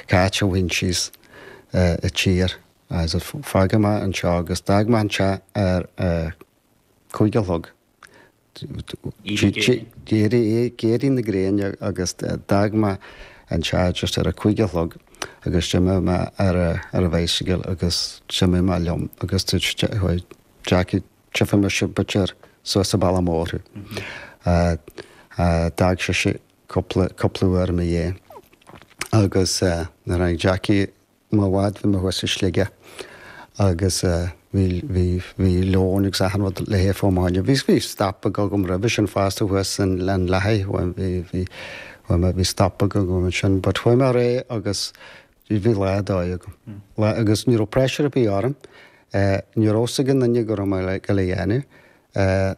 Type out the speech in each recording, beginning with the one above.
Cáit a bhain síos a tír. Fágfaidh mé anseo agus d'fhág mé an teach ar a cúig a chlog. Ag éirí na gréine agus d'fhág mé an teach just ar a cúig a chlog agus d'imigh mé ar an bhicycle agus d'imigh mé liom agus Jackie tífidh mise b'fhéidir suas an bealach mór thú. D'fhág sise cúpla, cúpla uair i mo dhiaidh agus nuair a tháinig Jackie m'fhad bhí mé thuas i Sligeach agus bhí, bhí, bhí lón agus achan rud le hithe agam. Bhí, bhí stop agam roimhe sin fosta thuas in, in Lathaigh, bhuel bhí, bhí, chuaigh mé, bhí stop agam ansin but chuaigh mé réidh agus bhí lá ar dóigh agam. Lá, agus ní raibh pressure ar bith orm, ní raibh fhios ag aon duine go raibh mé le, ag dul á dhéanamh.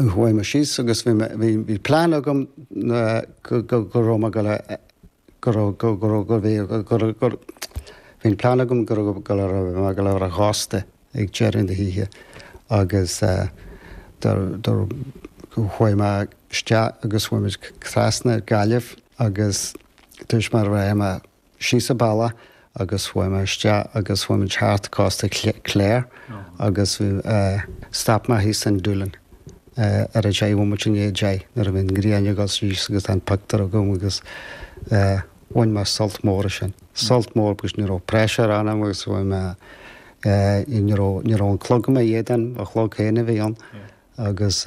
Chuaidh mé síos agus bhí mé, bhí, bhí plean agam go, go, go raibh mé ag dul a, go raibh, go, go raibh, go bhí, go raibh, go, bhí an plean agam go raibh, ag dul a, raibh mé ag dul ar an chósta ag deireadh na hoíche agus eh do, do, chuaigh mé isteach agus chuaigh muid trasna Gaillimh agus dúirt mé rachaidh mé síos an bealach agus chuaigh mé isteach agus chuaigh muid thart cósta an Chláir agus stop mé thíos in Doolin ar a deich bhomaite i ndiaidh a deich nuair a bhí an ghrian ag dul síos agus tá an pictiúr agam agus bhain mé sult mór as sin. Sult mór agus ní raibh pressure orm agus bhí mé ní raibh an clog i mo éadan, mo chlog féin a bhí ann agus.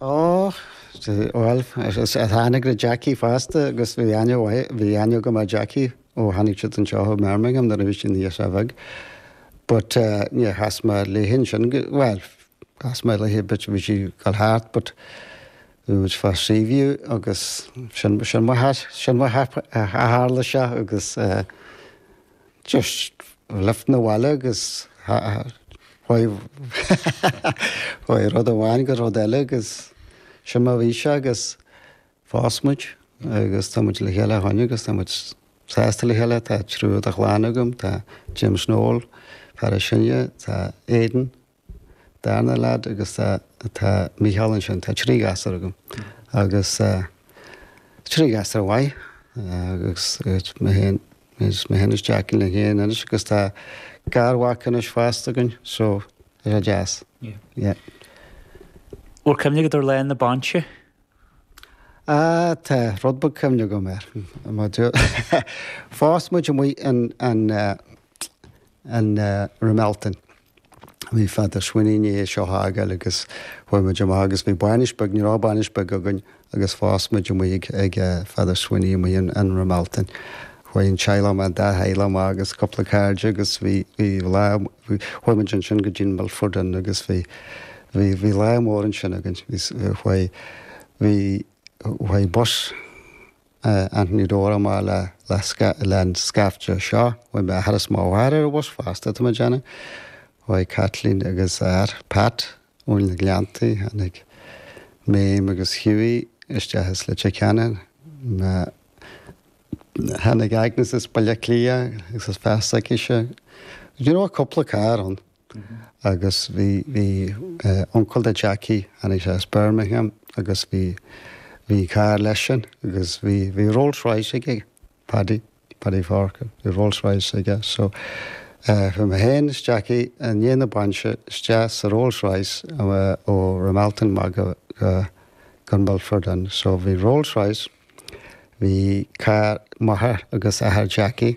Ó, bhuel, tháinig na Jackie fosta agus bhí aithne mhaith, bhí aithne agam ar Jackie ó tháinig siad anseo ó Bhirmingham nuair a bhí sí ina girseach bheag. But níor chas mé léi ansin, bhuel, chas mé léi but, bhí sí ag dul thart but bhí muid fá Seaview agus sin, sin mar sin mar a tharla sé agus. Just lift 'na bhaile agus chuaigh chuaigh rud amháin go rud eile agus sin mar a bhí sé agus phós muid agus tá muid le chéile ó shin agus tá muid sásta le chéile. Tá triúr de chlann agam, tá James Noel, fear is sine, tá Aidan, Darna lead agus tá Mícheál ansin, tá trí ghasúr agam agus trí ghasúr mhaith agus mé féin, is mé féin is Jackie linn féin anois agus tá garmhac anois fosta againn so tá sé deas. Bhfuil cuimhne agat ar Lá na Bainse? Ah tá rud beag cuimhne agam air. Phós muid amuigh in an in Ramelton. Bhí Father Sweeney i ndiaidh seo a fhágáil agus chuaigh muid amach agus bhí bainis beag, ní raibh bainis beag againn agus phós muid amuigh ag Father Sweeney amuigh in Ramelton. Chuaigh an teaghlach amach, an dá theaghlach amach agus cúpla cairde agus bhí bhí lá, chuaigh muid ansin go dtí an Milford Inn agus bhí bhí bhí lá mór ansin againn. Bhí chuaigh bhí chuaigh bus. Anthony Doran amach leis an scaifte seo chuaigh m'athair is mo mháthair ar an bhus fosta tá mé ag déanamh chuaigh Caitlín agus a fear Pat ó na Gleanntaí tháinig Méim agus Hughie isteach as Leitir Ceanainn tháinig Agnes as Baile Átha Cliath agus a fear s'aici seo do you know cúpla carr ann. agus bhí, bhí eh uncail do Jackie tháinig sé as Birmingham agus bhí, bhí carr leisean agus bhí, bhí Rolls Royce aige, Paddy, Paddy Forker, bhí Rolls Royce aige so eh chuaigh mé féin is Jackie i ndiaidh na bainse isteach sa Rolls Royce eh ó Ramelton amach go, go, go Milford Inn so bhí Rolls Royce, bhí carr m'athar agus athair Jackie,